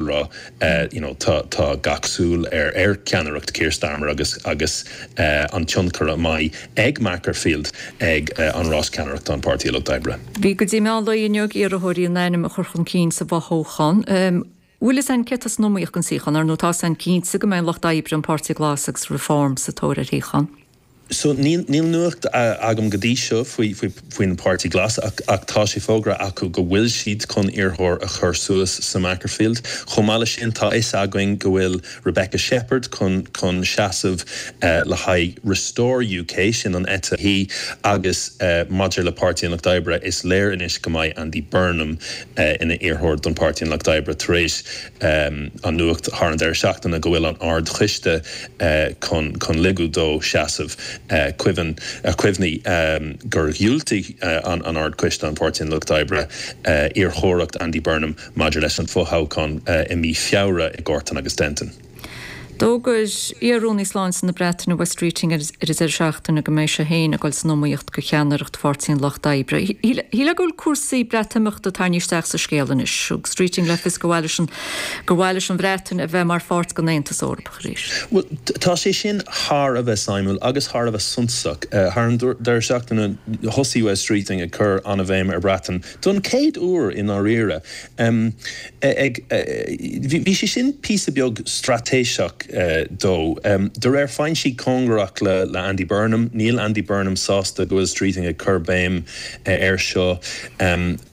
rá you know tá tá gach súil ar ar ceannaireacht Keir Starmer agus agus an tionchar a mbeidh ag Makerfield ag an rás ceannaireachta an Páirtí Lucht Oibre. Bhí go dtí meán lae inniu ag iarrthóirí a n-ainm a chur chun cinn sa bhfothoghchán. An bhfuil fhios a'inn cé atá san iomaíocht don suíochán, ar ndóigh tá fhios a'inn cinnte go mbeidh an Lucht Oibre, an Páirtí Glas agus Reform sa tóir ar an suíochán. So, níl nuacht agam go dtí seo faoin bPáirtí Glas ach tá sé fógartha acu go bhfuil siad chun iarrthóir a chur suas sa Makerfield. Chomh maith leis sin, tá 'fhios againn go bhfuil Rebecca Shepherd chun seasamh le haghaidh Restore UK, sin an eite dheis, agus maidir le Páirtí an Lucht Oibre, is léir anois go mbeidh Andy Burnham ina iarrthóir don Pháirtí an Lucht Oibre tar éis an nuacht thar an deireadh seachtaine go bhfuil an Ard-Choiste chun ligint dó seasamh. Cuimhnigh gur dhiúltaigh an Ard-Choiste, an Páirtí an Lucht Oibre, iarrthóireacht Andy Burnham maidir leis an fothoghchán i mí Feabhra i Gorton agus Denton. D'fhógair iar-Rúnaí Sláinte na Breataine Wes Streeting ag an deireadh seachtaine go mbeidh sé féin ag dul san iomaíocht do cheannaireacht Pháirtí an Lucht Oibre. Is léir go bhfuil cúrsaí Breatimeachta tarraingthe isteach sa scéal anois. Thug Streeting le fios gur mhaith leis an Bhreatain a bheith mar pháirt den Aontas Eorpach. Bhuel, tá sé sin thar a bheith suimiúil agus thar a bheith suntasach. Thar an deireadh seachtaine thosaigh Wes Streeting ag cur an-bhéim ar Bhreatain, don chéad uair i ndáiríre. Bhí sé sin píosa beag straitéiseach dó. De réir foinsí cóngarach le Andy Burnham, níl Andy Burnham sásta go bhfuil Streeting ag cur béim air seo.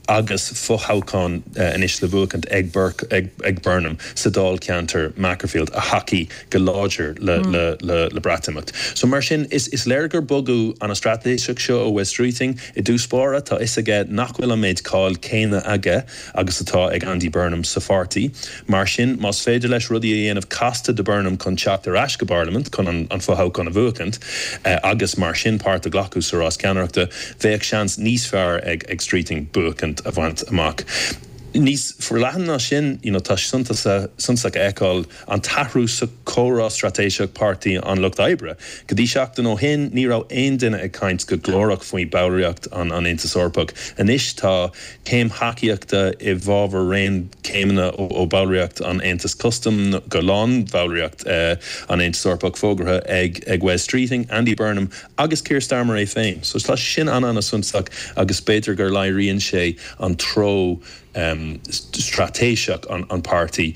Agus fothoghchán anois le buachaint ag Burke, ag Burnham sa dáilcheantar Makerfield a thacaigh go láidir le Breatimeacht. So mar sin, is léir gur bogadh ana straitéiseach seo ó Wes Streeting. I dtús báire, tá fhios aige nach bhfuil an méid cáil céanna aige agus atá ag Andy Burnham sa pháirtí. Mar sin, más féidir leis rudaí a dhéanamh casta do Burnham chun teacht ar ais go bParlaimint chun an fothoghchán a bhuachaint agus mar sin páirt a ghlacadh sa rás ceannaireachta, bheadh seans níos fearr ag Streeting buachaint a bhaint amach. Níos forleathan ná sin, you know, tá sé suntasach a fheiceáil an t-athrú sa chomhrá straitéiseach Páirtí an Lucht Oibre. Go dtí seachtain ó shin, ní raibh aon duine ag caint go glórach faoi ballraíocht an Aontas Eorpach. Anois tá. Céim thacaíochta i bhfabhar raon céimeanna ó bhallraíocht an Aontais Custaim go lán-bhallraíocht an Aontais Eorpaigh fógartha ag Wes Streeting, Andy Burnham agus Keir Starmer é féin. So tá sé sin an-an-suntasach agus b'fhéidir gur léiríonn sé an treo straitéiseach an páirtí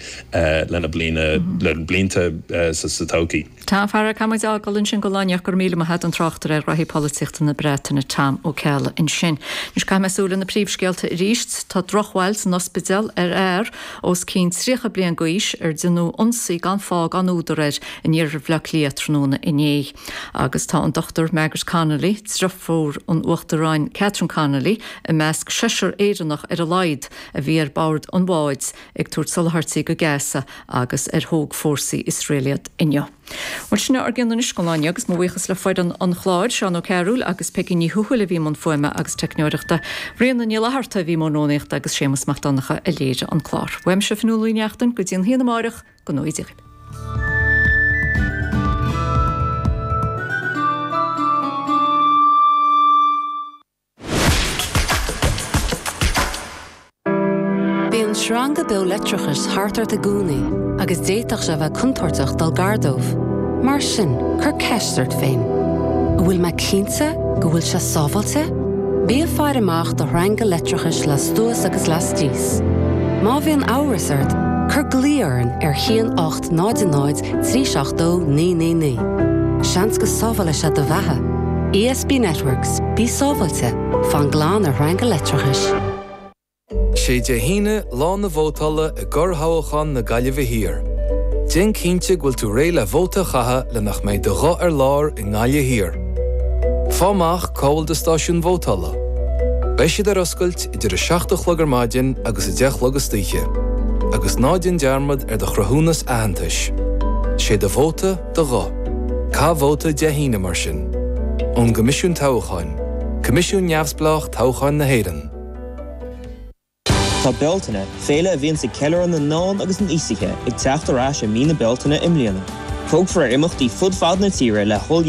lena blianta sa todhchaí. Tá faraor, caithfimid é a fhágáil ansin go raibh míle maith ag an tráchtaire ar ghnóthaí polaitíochta na Breataine, Tom Ó Ceallaigh, ansin. Anois caithfidh mé súil ar na príomhscéalta arís. Tá drochbhail sa ospidéal ar fhear os cionn 30 bliain d'aois ar déanadh ionsaí gan fáth gan údar air in iarthar Bhaile Átha Cliath tráthnóna inné. Agus tá an Dr Margaret Connolly, driofúr an Uachtaráin Catherine Connolly, i measc seisear Éireannach ar a laghad a bhí ar bord an bháid ag tabhairt soláthairtí go Gaza agus ar thóg fórsaí Iosrael iad inniu. Bhuel, sin a bhfuil againn anois, slán, agus mo bhuíochas le foireann an chláir, Seán Ó Cearúil agus Peigí Ní Thuathail a bhí i mbun fuaime agus teicneoireachta, Ríona Ní Fhlatharta a bhí i mbun rúnaíochta agus Séamus Mac Donncha a léirigh an clár. Uaimse Fionnuala Uí Neachtain, go dtí an t-am céanna amárach, go n-éirí libh. Bíonn sreanga beo leictreachais thart ort i gcónaí agus d'fhéadfadh sé a bheith contúirteach dul gar dóibh. Mar sin, cuir ceist ort féin, An bhfuil mé cinnte go bhfuil sé sábháilte? Bí ag faire amach do shreanga leictreachais lastuas agus laistíos. Má bhíonn amhras ort, cuir glao orainn ar 1 800. trí seachtó naoi naoi naoi. Seans go sábhálfaidh sé do bheatha. ESB Networks, Bí sábháilte, fan glan ar shreanga leictreachais. Sé Dé hAoine, lá na vótála i gcorrthoghchán na Gaillimhe Thiar. Déan cinnte go bhfuil tú réidh le vóta a chaitheamh le nach mbeidh do ghuth ar lár i nGaillimh Thiar. Faigh amach cá bhfuil do stáisiún vótála. Beidh siad ar oscailt. idir a seacht a chlog ar maidin agus a deich a chlog istoíche, agus ná déan dearmad ar do chruthúnas aitheantais. Sé do vóta do ghuth. Caith vóta Dé hAoine mar sin. Ón gCoimisiún Toghcháin, Coimisiún Neamhspleách Toghcháin na hÉireann. Tá Bealtaine, féile a bhíonns ag ceiliúradh na ndán agus an aosaithe, ag teacht ar ais i mí na Bealtaine i mbliana. Tabharfar faoi imeachtaí fud fad na tíre le hOll